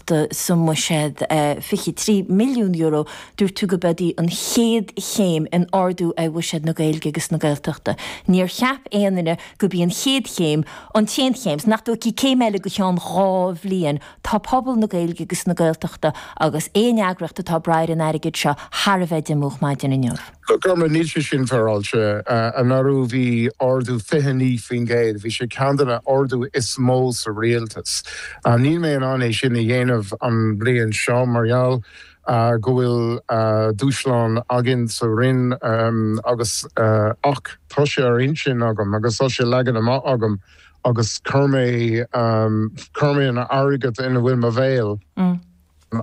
de sa mbuiséad €23 milliún, dúirt tú go mbeadh í an chéad chéim in ardú ar bhuiséad na Gaeilge agus na Gaeltachta. Níor cheap aon duine gurb í an chéad chéim an t-aon chéim, is nach dtógfaí céim eile go ceann dhá bhliain. Tá pobal na Gaeilge agus na Gaeltachta, agus aon eagraíocht atá ag brath ar an airgead seo, thar a bheith diomúch maidin inniu. Gormfhlaith, níl sé sin féaráilte. Anuraidh bhí ardú 29%, bhí sé ceann de na ardú is mó sa rialtas. Níl mé in ann é sin a dhéanamh an bhliain seo mar gheall go bhfuil dúshlán againn sa Roinn agus ach tá sé ar intinn agam agus tá sé leagan amach agam agus chuir mé chuir mé an airgead ina bhfuil mo bhéal.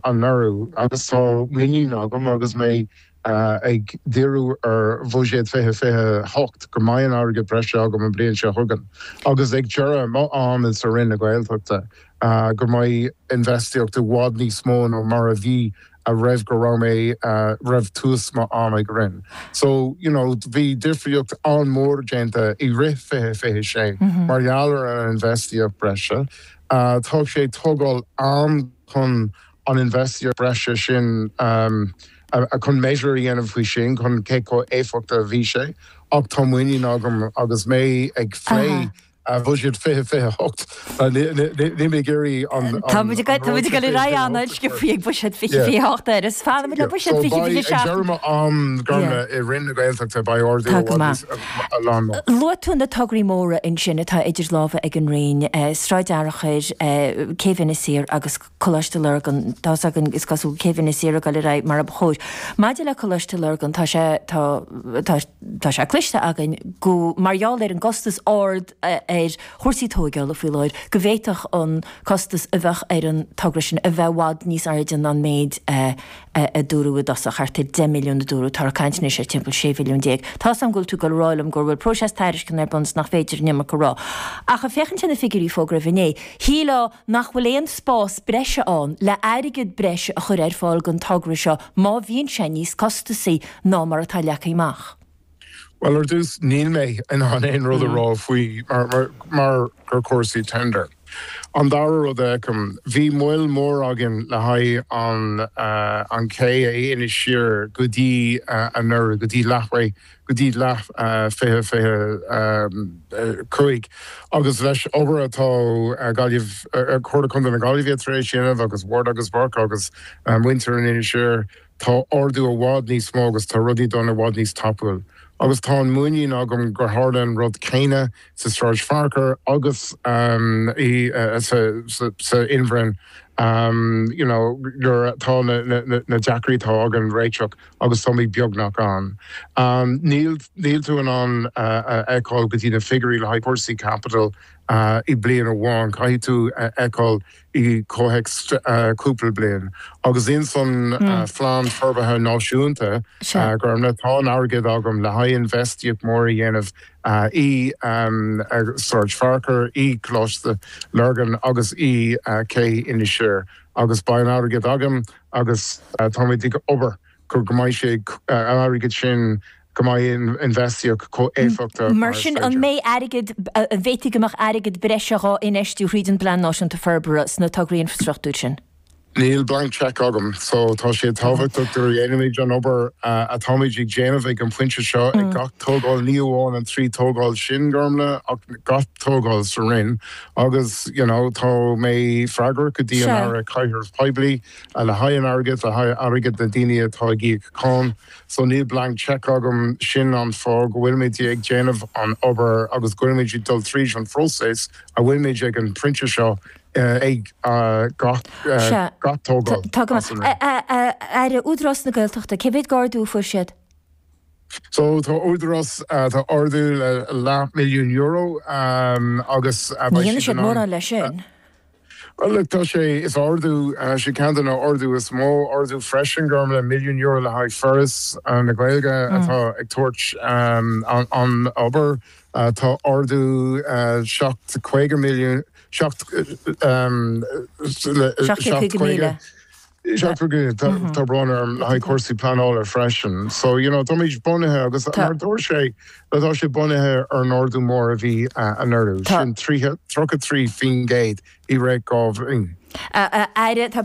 anuraidh agus tá muinín agam agus mé ag díriú ar Bhuiséad 2028 go mbeidh an airgead breise agam an bhliain seo chugainn agus ag deireadh mo am sa Roinn na Gaeltachta go mbeidh infheistíocht i bhfad níos mó ná mar a bhí a raibh go raibh mé roimh tús mo am ag Roinn so you know bhí difríocht an-mhór déanta i rith 2026 mar gheall ar an infheistíocht breise. Tá sé ag tógáil am chun an infheistíocht breise sin a, chun measure a dhéanamh faoi sin, chun cé chomh éifeachta a bhí sé. Ach tá muinín agam agus mé ag phlé bhuiséad 2028, níl mé ag iarraidh an rud sin a dhéanamh. Tá muid ag dul ar aghaidh anall, ag scríobh faoi bhuiséad 2028 air, is fada muid le bhuiséad 2027. Ag deireadh m'am, Gormfhlaith, i Roinn na Gaeltachta, beidh ardú. Luaigh tú na tograí móra ansin atá idir lámha ag an Roinn, Sráid Fhearchair, Cé Inis Oírr agus Coláiste Lurgan. Tá's againn, is cosúil, Cé Inis Oírr ag dul ar aghaidh mar ba chóir. Maidir le Coláiste Lurgan, tá sé, tá, tá, tá sé cloisteáilte againn go, mar gheall ar an gcostas ard ar chúrsaí tógála faoi láthair, go bhféadfadh an costas a bheadh ar an togra sin a bheith i bhfad níos airde ná an méid a, a a dúradh i dtosach, thart ar 10 milliún a dúradh, tá caint anois ar timpeall 16 mhilliún. Tá's a'm go bhfuil tú ag rá liom go bhfuil próiseas tairisceana ar bun 's nach féidir an iomarca a rá. Ach ag féachaint ar na figiúirí a fógraíodh inné, shílfeá nach bhfuil aon spás breise ann le airgead breise a chur ar fáil don togra seo má bhíonn sé níos costasaí ná mar atá leagtha amach. Bhuel, ar dtús, níl mé in ann aon rud a rá faoi mar gur cúrsaí tender. An dara rud a fheicim, bhí moill mhór againn le haghaidh an cé in Inis Oírr go dtí anuraidh, go dtí leath ré, go dtí leath 2025. Agus leis obair atá Gaillimh, Comhairle Contae na Gaillimhe tar éis dhéanamh agus Ward agus Burke agus muintir Inis Oírr, Tá ardú i bhfad níos mó agus tá rudaí done i bhfad níos tapúil. Agus tá an muinín agam go dtarlaíonn an rud céanna sa Sráid Fhearchair agus sa Indreabhán, you know, gur tá na deacraí atá againn réiteach agus táimid beagnach ann. Níl tú in ann a fheiceáil go dtí na figiúirí le haghaidh cúrsaí caipitil i bliain amháin, caithfidh tú a fheiceáil, i gcomhthéacs cúpla bliain, agus ins an Phlean Forbartha Náisiúnta Gormfhlaith, tá an airgead agam le haghaidh infheistíocht mhór a dhéanamh i Sráid Fhearchair, i gColáiste Lurgan agus i gCé Inis Oírr, agus beidh an airgead agam agus táimid ag obair. go mbeidh sé ag, an airgead sin, go mbeidh infheistíocht chomh éifeachtach mar is féidir. An mbeidh airgead, an bhféadfadh go mbeadh airgead breise dhá infheistiú thríd an bPlean Náisiúnta Forbartha sna tograí infrastruchtúir sin? Níl blank cheque agam, so tá sé tábhachtach go ndéanfaimid an obair atáimid ag déanamh ag an phointe seo ag gach tógáil, ní amháin an trí tógáil sin, Gormfhlaith, ach gach tógáil sa Roinn agus, you know, tá mé freagrach go dtí an Aire Caiteachas Poiblí. le haghaidh an airgid, le haghaidh airgead na daoine atá ag íoc cáin. So níl blank cheque agam, sin an fáth go bhfuilimid ag déanamh an obair agus go bhfuilimid ag dul tríd an phróiseas a bhfuilimid ag an phointe seo ag gach tógáil as an nua. Aire Údarás na Gaeltachta, cé mhéad ardú a fuair siad? So tá Údarás, tá ardú le leath milliún euro agus. Ní dhéanfaidh siad mórán leis sin. Bhuel, tá sé, is ardú, tá sé ceann de na h-ardú is mó, ardú freisin Gormfhlaith, milliún euro le haghaidh Foras na Gaeilge atá ag tabhairt an obair, tá ardú seacht, caoga milliún, seacht, seacht, caoga, Tá brón orm le haghaidh cúrsaí pleanála freisin. So, you know, táimid bunaithe agus mar a dúirt sé, tá sé bunaithe ar an ardú mór a bhí anuraidh, sin 33% i rith 2000. Aire, tá.